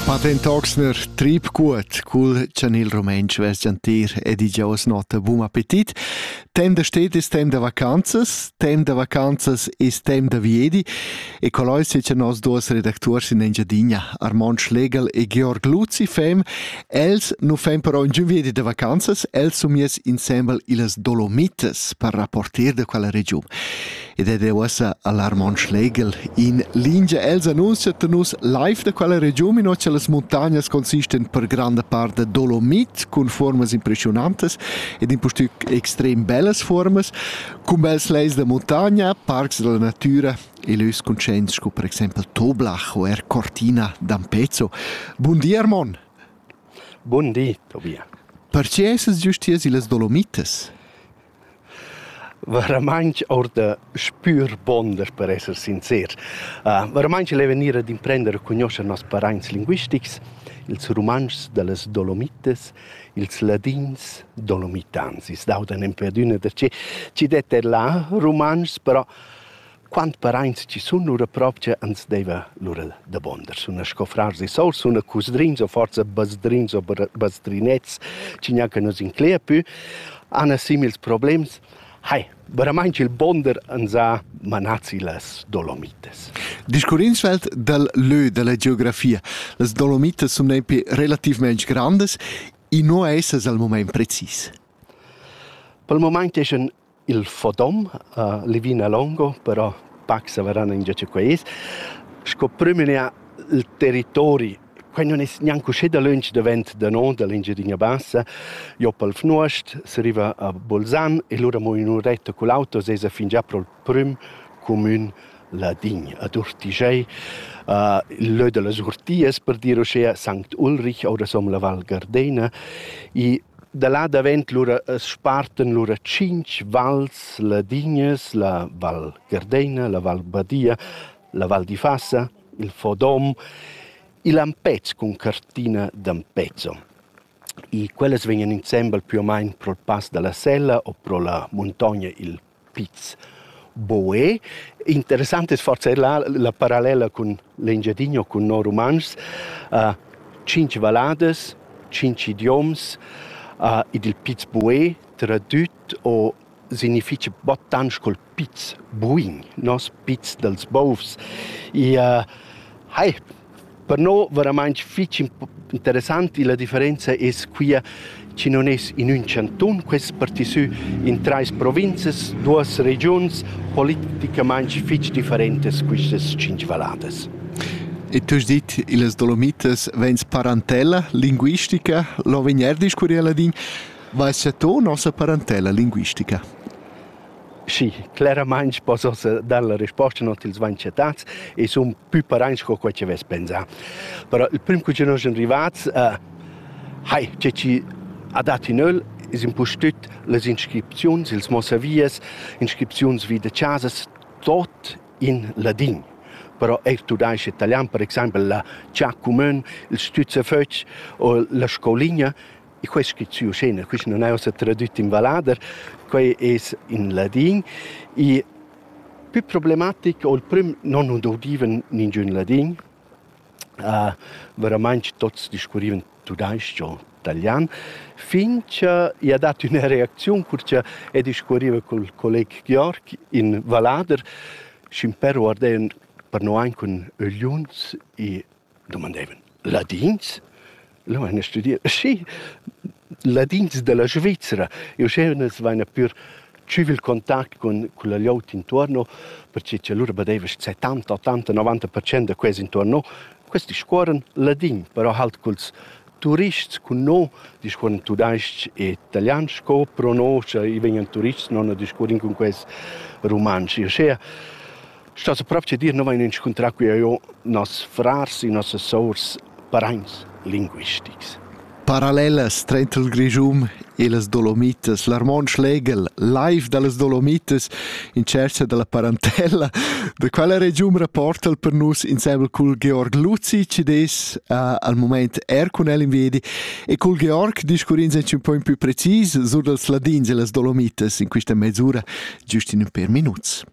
Patent Oxner trip cuort cul chan il rumentsch vesgiantir ed i giaus nota bun appetit. Temp da sted es temp da vacanzas, temp da vacanzas es temp da viedi e colloi secha nos duos redactuors in Engiadina, Armand Schlegel e Georg Luzi fem. Els nu fem però ingün viedi da vacanzas, els sun mies insembel illas Dolomitas per rapporter da quella regiun. ed ed è uossa a l'Armon Schlegel in lingia. Els annunzian a nus live da quella regiun, in che las montagnas consistan per granda part da dolomit cun formas impressionantes ed in pustüc extrem bellas formas, con bels leis da montagna, parcs della natura e lös conscients sco per exempel Toblach o er Cortina d'Ampezzo. Bun di Armon. Bun di, Tobia. Perche essas giustiers illas Dolomites? Varamaing our da spür bun daspö esser sincer. varamaing il è vegnir ad imprender a cugnuoscher noss paraints linguistics, ils rumantschs da las Dolomitas, ils ladins dolomitans. I's dauda nempe adüna darcheu. Chi det er là rumantschs, però Quant paraints chi sun lura propcha ans deiva lura dabonder. Suna sco frars e sours, suna cusdrins o forsa basdrins o basdrinets chi gnanca nu's inclegia pü, hana simils problems. Hai, veramaing il bonder ans ha manats illas Dolomitas. Discurrins svelt dal lö da la geografia. Las Dolomitas sun nempe relativmaing grandas, i no esa al mumaint precis. Pel mumaint eschan Il fodom, Levina longo, però pac savaran ingià cha quai es, sco prüm in ha il territori. Quai nun es gnanc uschè dalöntsch davent da no, da l'Engiadina Bassa. Jo pel Fnuost, si riva a Bolzan e lura mo in uretta cul auto s'esa fingià pro'l prüm cumün ladin, ad Urtigiai, il lö da las Urtias per dir uschea, Sankt Ulrich, oura s'ho la Val Gardena. I Da là davent lura as spartan lura tschinch vals ladignas, la Val Gardeina, la Val Badia, la Val d'Ifasa, il Fodom, il Ampez cun cartina d'Ampezzo. I quellas vegnan insembel pü o main pro'l Pass da la Sella o pro la muntogna il piz. Boe. Interessant es forsa eir là la parallela cun l'Engiadinho, cun no rumantschs. Uh, tschinch valladas, tschinch idioms, uh, ed il piz Boe, tradüt o significha bottantsch col piz buin, nos piz dals bovs. I, uh, hai, Per no veramaing fich interessant illa differenza es quia chi nun es in ün chantun, quest partisü in trais provinzas, duos regiuns politicamaing fich differentas quistas tschinch valladas. E tu has dit, illas Dolomitas vegns parantella linguistica, lo vegnerdisch curier ladin, vai se tu nossa parantella linguistica? Sì, cleramaing possas dar la resposta non t'ils vanchetats e sun pü paraints co quai chi vess pensà. Però il prüm cu chi nos sun rivats, uh, hai, che chi ha dat in öl es impustüt las inscripziuns, ils mossavias, inscripziuns vi da chasas, tot in ladin. Però eir tudais-ch e italian, per exaimpel la Cha cumün, il Stützefötch o la Scouligna E quest schizuo scena, quist non è ossa tradüt in vallader, quai es in ladin. I pü problematic o il prüm non nun doudivan ningün ladin. Uh, veramaing tots discurrivan tudais-ch o talian, fin cha i ha dat üna reacziun cur cha e discurriva col colleg Georg in vallader, schimpero ardean per no aint cun ögliuns e dumandevan ladins. Leu han studiu. Sì, ladins dalla Svizra. E uschè unas vaina pür tschüv il contact cun culla glieud intuorno, perche cha lura badeva che setanta, ottanta, novanta percent da quels intuorno questi discuorran ladin, però halt culs turists cun no discuorran tudais-ch e italian sco pro no, scha i vegnan turists non discuorrin cun quels rumantsch. E uschea Stas propi che dir, nu vain inscuntrà cu eau noss frars e nossas sours paraints linguistics. Parallelas trainter il Grischun e las Dolomitas. L'Armon Schlegel, live da las Dolomitas in tschercha da la parentella. Da quella regiun rapporta el per nus insieme cul Georg Luzi, ci des uh, al moment er cun el in vedi, e cul Georg discurrins anche un po' in più precis sur dals ladins e las Dolomitas in questa mezz'ora, giust in per minuts.